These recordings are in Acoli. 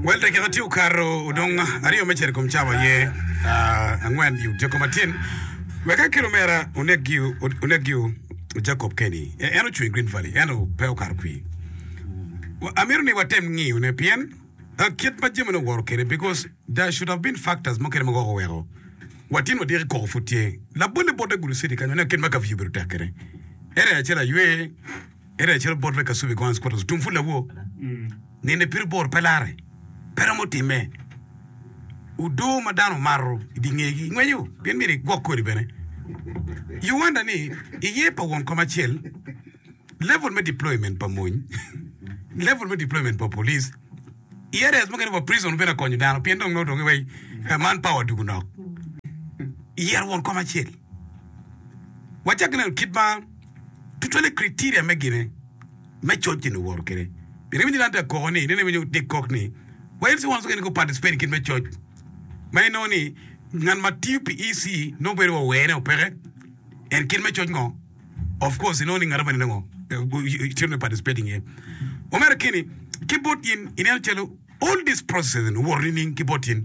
Well, dakika tye okato odong aryo me cito i kom cawa aye angwen i Odiko Matin. Weka ki lumera onek giu, onek giu Jacob Kenney. E- En ocung i Green Valley, ento pe okato kwir. Wa- Amito ni watem ngiyone, pien ah, kit ma jamine oworo kwede, because there should have been factors mukene ma gwok oweko watino odiki koko pud tye. Labolle bot Agulu City kany, oneno kit ma kapiyu obedo tek kwede. Area acel aywe, Ento acalo bot me Kasubi Guns Quarters tung pud lawo, nine pire bor pe lare, pe romo timme. Odoo ma dano mato i dye ngegi ngwenyo pien myero igwok kodi bene. Uganda ni iye pa won kom acel, level me deployment pa mony, level me deployment pa police, i areas mukene wa prison bene akonyo dano pien dong nongo donge wai eh, man power dugu nok. Yero won kom acel. Wacak ki neno kit ma. Tutwalle criteria me gine me coc gin oworo kede. Pire winyo dan ta koko ni, nene winyo Dick kok ni, wa en siwon sokeni ko participate i gin me coc ma en nongo ni ngat ma tiyo pi EC nongo bedo wa were o peke en kit me coc ngo of course inongo ni ngato mene nongo should be participating iye. Omera keni ki bot in ineno calo all this processes eni oworo nining ki bot in?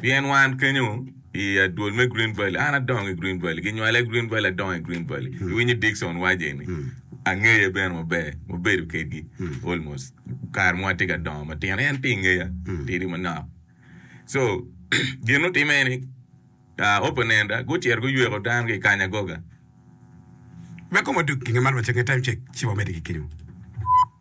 Pien wan kenyo i adwol me Green Valley, an adongo i Green Valley, ginywala i Green Valley, adongo i Green Valley. Iwinyo Dickson waco eni? Angeye bene maber, wabedo kedgi almost kare ma watye ka dongo matino, en tye i ngeya tidi manok. So, gin mutimme ni opponent-ta gucito guyweko dano ki i kany agoga. Wek koma odog, pinga man wacce nge time check ci wamedde ki kenyo.